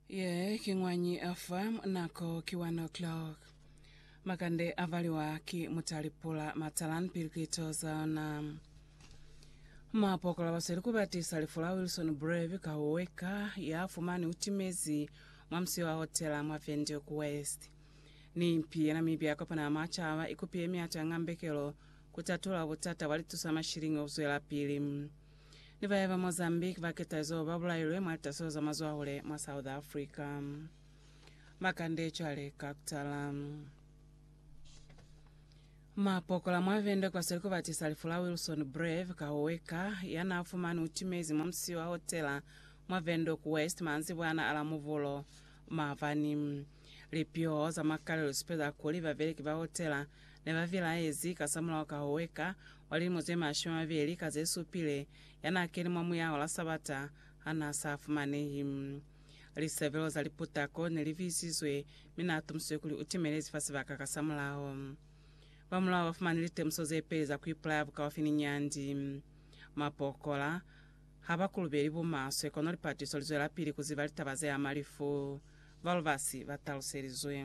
Ye ki ñwañi ya fa nako ki one o'clock. Makande a valiwa ki mutali pula matalan pili ku itoza ona. Ma pokola ba sweli ku batisa lifu la Wilson Brave ka ho weka ya fumani u timezi mwa musiyo wa hotela mwa Windhoek West. Ni impi ye Namibia ya Kopano ya Macaba i kupiye miato ya ñambekelo ku tatula butata bwa litusa mashilingi ho zwela pili. ni ba yaba Mozambique ba ketazo ba bulailwe mwa litaso za mazwahule mwa South Africa. Makande cwale ka kutala. Mapokola mwa Venda kwa Seliko ba tisa lifu la Wilson Brave Kahoweka ya na fumani utimezi mwa musio wa hotela mwa Windhoek West manzibwana ala Muvulo mabani. Lipio za makalelo sipe za kuli babeleki ba hotela ne ba vilaezi kasamulaho ka ho weka wa lilimo ze mashumi a mabeli ka ze supile ya n'a keni mwa muyaho la Sabata ha n'a sa fumanehi. Lisebelo za liputako ne li viisizwe, mi n'a tumusizwe kuli u timelezi fa sibaka kasamulaho. Ba mulao ba fumani litemuso ze peli za ku ipulaya bukaufi ni nyandi. Mapokola ha ba kulubeli bumaswe, kono lipatiso li zwelapili ku ziba litaba ze ama lifu, Valvas ba taluselizwe.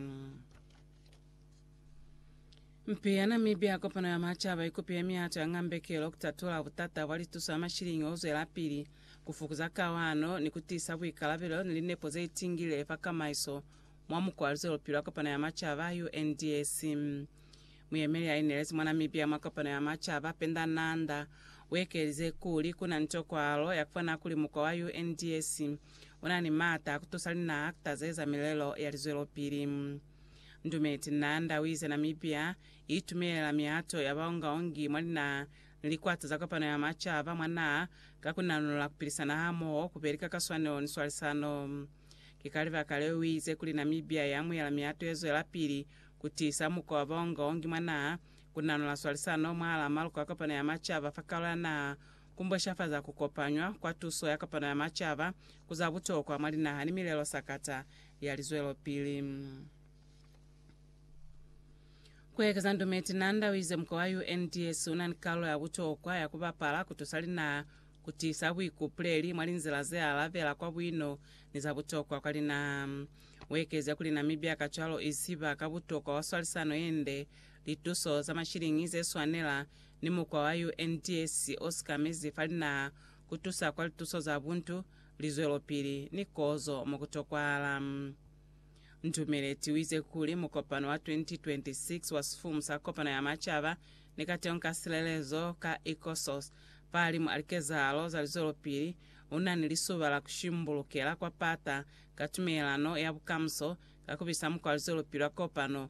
Mpi ya Namibia Kopano ya Macaba ikopi ya mihato ya ngambekelo kutatola butata bwa lituso ya mashilingi ozwelapili, kufukuza kawano, ni kutiisa buikalabelo ni linepo zeitingile fa kamaiso mwa mukwa wa luzwelopili wa Kopano ya Macaba, UNDAC. Muyemeli ya inelezi mwa Namibia mwa Kopano ya Macaba, Penda Nanda, uekelize kuli kuna ni tokwahalo ya kufana kuli mukwa wa UNDAC Una ni maata a kutusa lina kutazeza milelo ya lizwelopili. Ndumeti Na Ndawize Namibia itumelela mihato ya baongaongi mwa lina ni likwata za Kopano ya Macaba mwa naha ka kunanula kupilisana hamoho kubeli ka kaswanelo ni swalisano. Ki ka libaka leo uize kuli Namibia iamuyela mihato yezwelapili kutiisa mukwa wa baongaongi mwa naha kunanula swalisano mwahala maluko a Kopano ya Macaba fa kaolo ya naha Ku mboshafaza ku kopanywa kwa tuso ya kopano ya macaba ku za butokwa mwa linaha ni milelo sakata ya lizwelopili. Ku ekeza ndume, Tinanda u ize muko wa UNDS u na ni kalulo ya butokwa ya ku bapala ku tusa linaha ku tiisa buikupuleli mwa linzila ze alabela kwa buino ni za butokwa kwa linaha. U ekeze kuli Namibia kacwalo i ziba ka butokwa wa swalisano ye nde Lituso za mashiliñi ze swanela ni mukwa wa UNDS o sikamezi fa linaha ku tusa kwa lituso za buntu, lizwelopili, ni kozo mo ku tokwahala. Ndumeleti u ize kuli, Mukopano wa 2026 wa Sifumu sa Kopano ya Macaba ni Kateho ka Silelezo ka Ecosos fahalimu a likezahalo za lizwelopili u na ni lisuba la ku shimbulukela kwa pata ka tumelelano ya bukamuso ka ku bisa mukwa wa lizwelopili wa kopano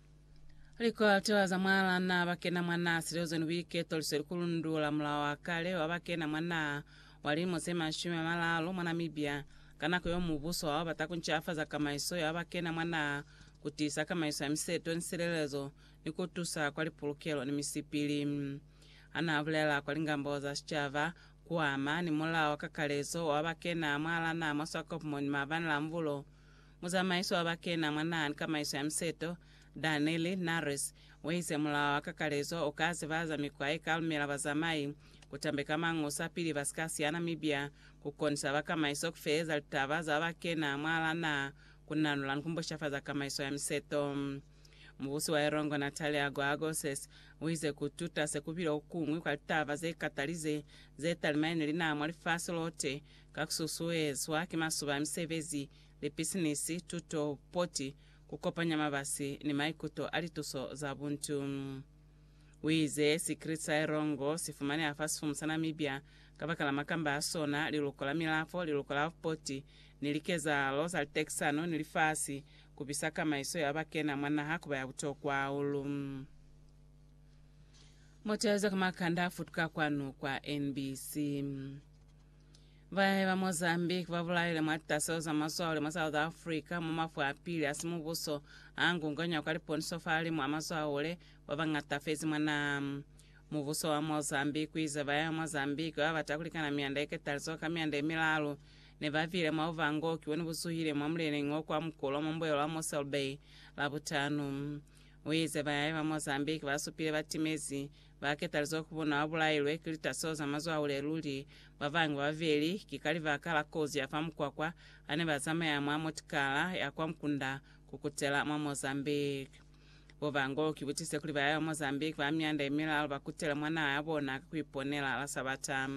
Likolatola za mwalana bakena mwa naha silozoni buiketo liso likulundula mulao wa kale wa bakena mwa naha wa lilimo se mashumi a malalu mwa Namibia ka nako yeo mubuso wao bata kuncafaza kamaiso ya bakena mwa naha, kutiisa kamaiso ya miseto ni silelezo, ni kutusa kwa lipulukelo ni misipili. Hanaabulela kwa lingambo za sicaba, kuama ni mulao wa kakalezo wa bakena mwalana mwa Swakopmund maabani la Mvulo, Muzamaiso wa bakena mwa naha ni kamaiso ya miseto, Danele Nares, waize mulao wa kakalezo uka zibahaza mikwa yeka lumela bazamai kutambeka mangusa pili basika siya Namibia, kukonisa ba kamaiso kufeleza litaba za bakena mwalaa naha, kunanula ni kumbushafaza kamaiso ya miseto. Mubusi wa Erongo Natalia Goagoses uize kututa sekubile kukuñwi kwa litaba zekatalize zetalima yene linaha mwa lifasi lote ka kususuezwa ki masuba a misebezi lipisinisi, tuto, poti, kukopanya mabasi ni maikuto a lituso za buntu. Uize sikiliti sa Erongo sifumaneha fa sifumu sa Namibia kabakala makamba a sona, liluko la milafo, liluko la poti, ni likezahalo za litekisano ni lifasi, kubisa kamaiso ya bakena mwa naha kuba ya butokwa hahulu. Motelezo ka makanda a futuka kwanu kwa NBC. Bayahi ba Mozambique ba bulaile mwa litaselo za mazwahule mwa South Africa mwa mafu a pili a simubuso a ngunganywa kwa liponiso fa limu a mazwahule ba bañata fezi mwa naha. Mubuso wa Mozambique u ize bayahi ba Mozambique ba ba bata ku likana mianda ye ketalizoho ka mianda ye milalu ne ba bile mwa buvangoki bo ne bu zuhile mwa muleneñi o kwa mukulu wa mwa mbuelo wa Mossel Bay Labutanu. U ize bayahi ba Mozambique ba supile batimezi Ba ketalize ku bona ba bulailwe ki litaso za mazwaule luli. Ba bangi ba babeli ki ka libaka la kozi ya fa mukwakwa ha ne ba zamaya mwa motikala ya kwa mukunda ku kutela mwa Mozambique. Bo Bango ki butise kuli ba ya Mozambique ba mianda ye milalu ba kutele mwa naha ya bona ka ku iponela la Sabata.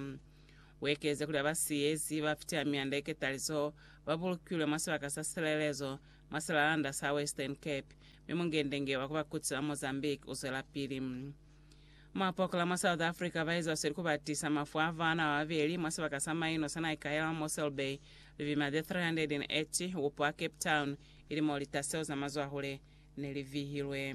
U ekeze kuli ba ba siyezi ba fitiha mianda ye ketalizo ba bulukilwe mwa sibaka sa silelezo mwa silalanda sa Western Cape, mi mungendenge wa ku ba kutsi ba Mozambique u zwelapili. Mwa Pokela mwa South Africa, ba eza sweli ku ba tisa mafu a baana ba babeli mwa sibaka sa maino sa Naikaela mwa Mossel Bay, lipima ze 380 upo a Cape Town, ili mo lita seo za mazwahule ne li vihilwe.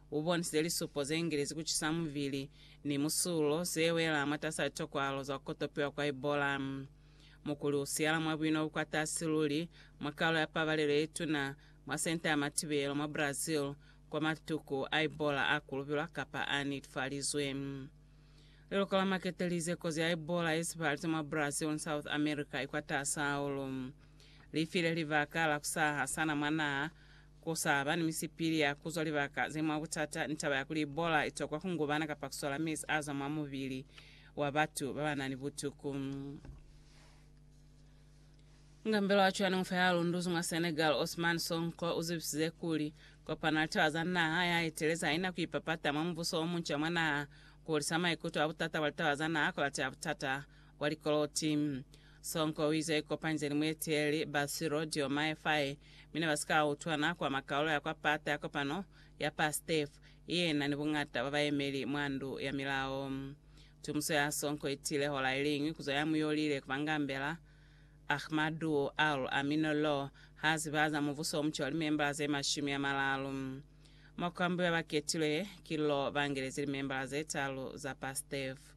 U bonisile lisupo ze ngilezi ku cisa mubili ni musulo ze wela mwatas'a tokwalo za ku kotopiwa kwa Ebola. Mukuli u siyala mwa buino bu kwatasi luli mwa kalo ya pabalelo ye tuna mwa senta ya matibelo mwa Brazil kwa matuku a Ebola a kulubilwa kapa a nitfalizwe. Liluko la Makete lize kozi ya Ebola ye sepahalize mwa Brazil ni South America i kwatasi hahulu. Li file libaka la ku sa hasana mwa naha Ku sa ba ni misipili ya ku zwa libaka ze mwa butata ni taba ya kuli Ebola i tokwa ku ngubana kapa ku sola mezi a zwa mwa mubili wa batu ba ba na ni butuku. Mukambeli wa cwanimufa ya lunduzi mwa Senegal, Ousmane Sonko, u zibisize kuli, Kopano ya Litaba za Naha ya Etelezi ha i na ku ipapata mwa mubuso o munca mwa naha, ku hulisa maikuto a butata bwa litaba za naha ku lata ya butata. Kwa likoloti. Sonko u ize ikopanize ni mueteli ba Cyril Diomaye Faye mi ne ba si ka utwana kwa makaulo ya kwa pata ya kopano ya PASTEF i yena ni buñata bwa bayemeli mwa ndu ya milao. Tumuso ya Sonko i tile hola i liñwi ku zwa ya mu yolile ku ba ngambela, Ahmadu Al Amino Lo, ha ziba za mubuso o muca wa limembala ze mashumi a malalu. Mwa ku ambuya ba ketilwe, ki Lo ba ngelezi limembala ze talu za PASTEF.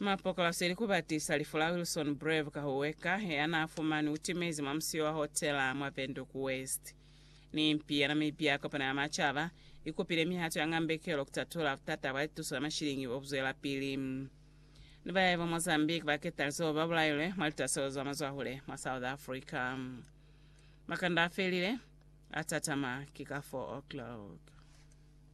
Mapokolasi ili kubatisa lifu la Wilson Brave Kahuweka heanaafumanwi utimezi mwa musiyo wa hotela mwa Windhoek West. Ni mpi ya Namibia Kopano ya Macaba ikupile mihato ya ngambekelo kutatula butata bwa lituso la mashilingi bobuzwelapili. Ni bayahi ba Mozambique baketali zeo babulailwe mwa litaselo za mazwahule mwa South Africa. Makanda afelile, atatama ki ka 4 o'clock.